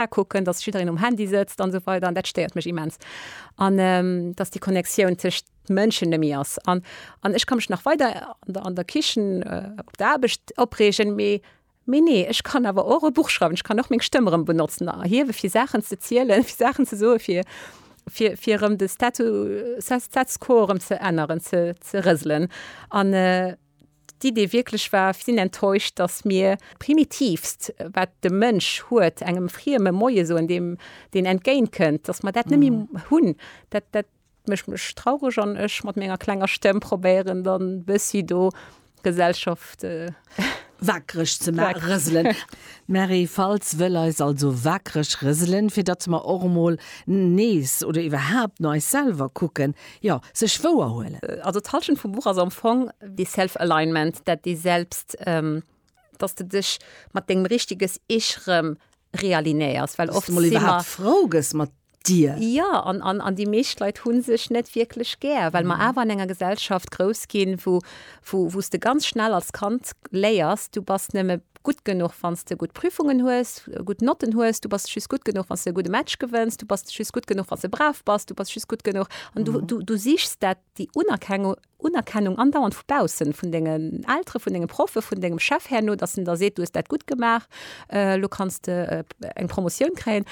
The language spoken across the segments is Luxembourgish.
akucken, dass jiddereen um Handy sëtzt an esou weider an dat stéiert mech immens. An ähm, dass déi Connectioun tëscht Mënschen nëmi ass. An, an ech ka mech nach weider an der, an der Kichen äh, op der Aarbecht opreegen, mee Mee nee, ech kann awer och e Buch schreiwen, ech kann och meng Stëmmerem benotzen a hiewe fir Saachen ze zielen, fir Saachen ze soe fir fir fir erëm de Statu Status quo erëm ze änneren, ze, ze rëselen. An äh, d'Idee wierklech war, sinn enttäuscht, datt mir d'Primitivst, wat de Mënsch huet, engem Frieme Moie soen, deem deen entgéint kënnt, datt mer dat net méi hunn. Dat, dat mécht mech traureg an ech mat menger klenger Stëmm probéieren dann bëssi do d'Gesellschaft. Waakreg ze maachen, rëselen. D'Mary Faltz wëll eis also waakreg rëselen, fir datt mer och emol nees oder iwwerhaapt no eis selwer kucken, Jo, sech wouer huelen. Also d'Halschent vum Buch ass am Fong dee Self-Alignment, dat dee selbst, dass de dech mat dengem richteges Ich rëm realinéiers, well oft si mer. Dass de mol iwwerhaapt frou gëss mat dir. Jo, an déi meescht Leit hu sech net wierklech gär, well mer awer an enger Gesellschaft grouss ginn, wou s de ganz schnell als Kand léiers, du bass nëmme. gutt genuch wann s de gutt Prüfungen hues, gutt Notten hues, du bass just gutt genuch wann s de e gudde Match gewënns, du bass just gutt genuch wann s de brav bass, du bass just gutt genuch an du du du sichs dat déi Unerkengu Unerkennung andauernd vu baussen, vun dengen Eltere, vun denge Proffe, vun dengem Chef herno, datt en da seet du hues dat gutt gemaach, elo kanns de eng Promotioun kréien.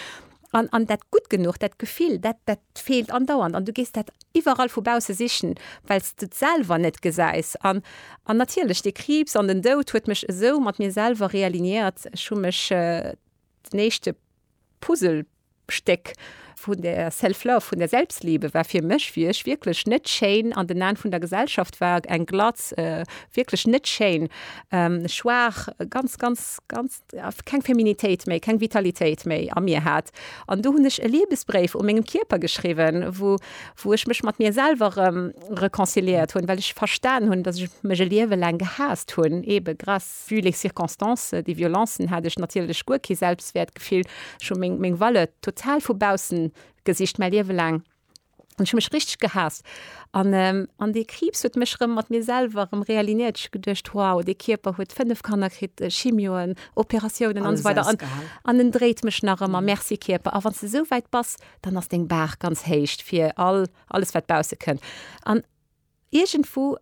An, an dat gutt genuch, dat Gefill, dat, dat feelt andauernd. An du gees dat iwwerall vu bausse sichen, well s du et selwer net gesäis. An, an natierlech, dee Kriibs an den Doud huet mech esou mat mir selwer realigneiert. Ech hu mech den éischte Puzzlestéck vun der Self-Love, vun der Selbstliebe war fir mech, wéi ech wierklech net schéin an den Aen vun der Gesellschaft war, eng glatz, wierklech net schéin, schwaach, ganz, ganz, ganz. keng Feminitéit méi, keng Vitalitéit méi a mir hat. An do hunn ech e Liebesbréif u mengem Kierper geschriwwen, wou, wou ech mech mat mir selwer erëm reconciliéiert hunn, well ech verstan hunn, dass ech mech e Liewe laang gehaasst hunn, ebe grâce, vu les circonstances, déi Violencen, hat ech natierlech guer kee Selbstwäertgefill, ech hu meng, meng Valeur total vu baussen gesicht, mäi Liewe laang. An ech hu mech richteg gehaasst. An, an dee Kriibs huet mech erëm mat mir selwer erëm realignéiert. Ech hu geduecht, wow, dee Kierper huet fënnef Kanner kritt, Chimioen, Operatiounen an esou weider. Alles ausgehalen. An en dréit mech nach ëmmer. Merci Kierper. A wann s de esou wäit bass, dann ass deng Baach ganz héich fir all, alles wat bausse kënnt. An iergendwou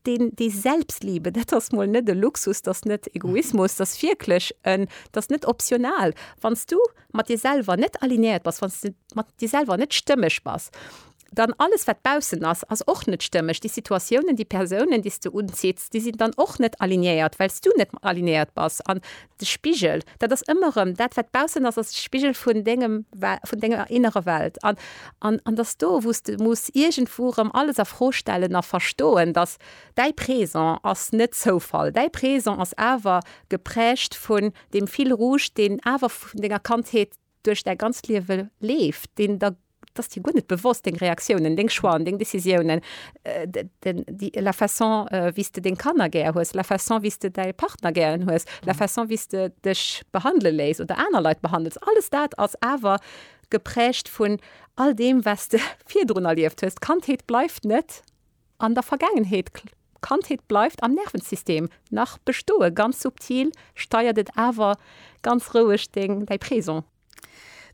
den, die Selbstliebe, dat ass mol net e Luxus, dat ass net Egoismus, dat ass wierklech en, dat ass net optional. Wann s du mat dir selwer net alignéiert bass, wann s de mat dir selwer net stëmmeg bass, dann alles, wat baussen ass, ass och net stëmmeg. Déi Situatiounen, déi Persounen, déi s de unzitts, déi sinn dann och net alignéiert, well s du net alignéiert bass. An De Spigel, dat ass ëmmer erëm, dat wat baussen ass, ass de Spigel vun dengem, vun denger innere Welt. An, an, an dass do, wou s de muss iergendwou erëm alles a Fro stellen a verstoen, dass däi Présent ass net Zoufall, däi Présent ass awer geprägt vun deem Fil rouge, deen awer vun denger Kandheet, duerch däi ganzt Liewe leeft, deen der, et ass dir guer net bewosst, deng Reaktiounen, deng Choixen, deng Décisiounen, la façon wéi s de deng Kanner gär hues, la façon wéi s de däi Partner gären hues, la façon wéi s de dech behandele léiss oder aner Leit behandels, alles dat ass awer geprägt vun all deem wat s de virdrun erlieft hues. D'Kandheet bleift net An der Vergaangenheet, Kandheet bleift am Nervensystem nach bestoen, ganz subtil steiert et awer ganz roueg deng, däi Présent.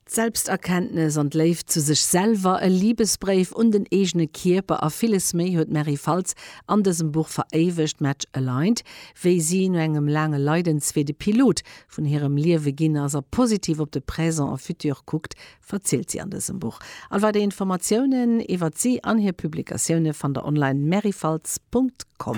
D'Selbsterkenntnes an d'Léift zu sech selwer, e Libesbréif un den eegene Kierper a villes méi huet d'Mary Faltz an dësem Buch veréiwegt, Match Aligned, wéi si no engem laange Leidenswee de Pilot vun hirem Liewe ginn ass a positiv op de Présent a Futur kuckt, verzielt si an dësem Buch. All weider Informatiounen iwwert si an hir Publikatioune fannt der online merryfaltz.com.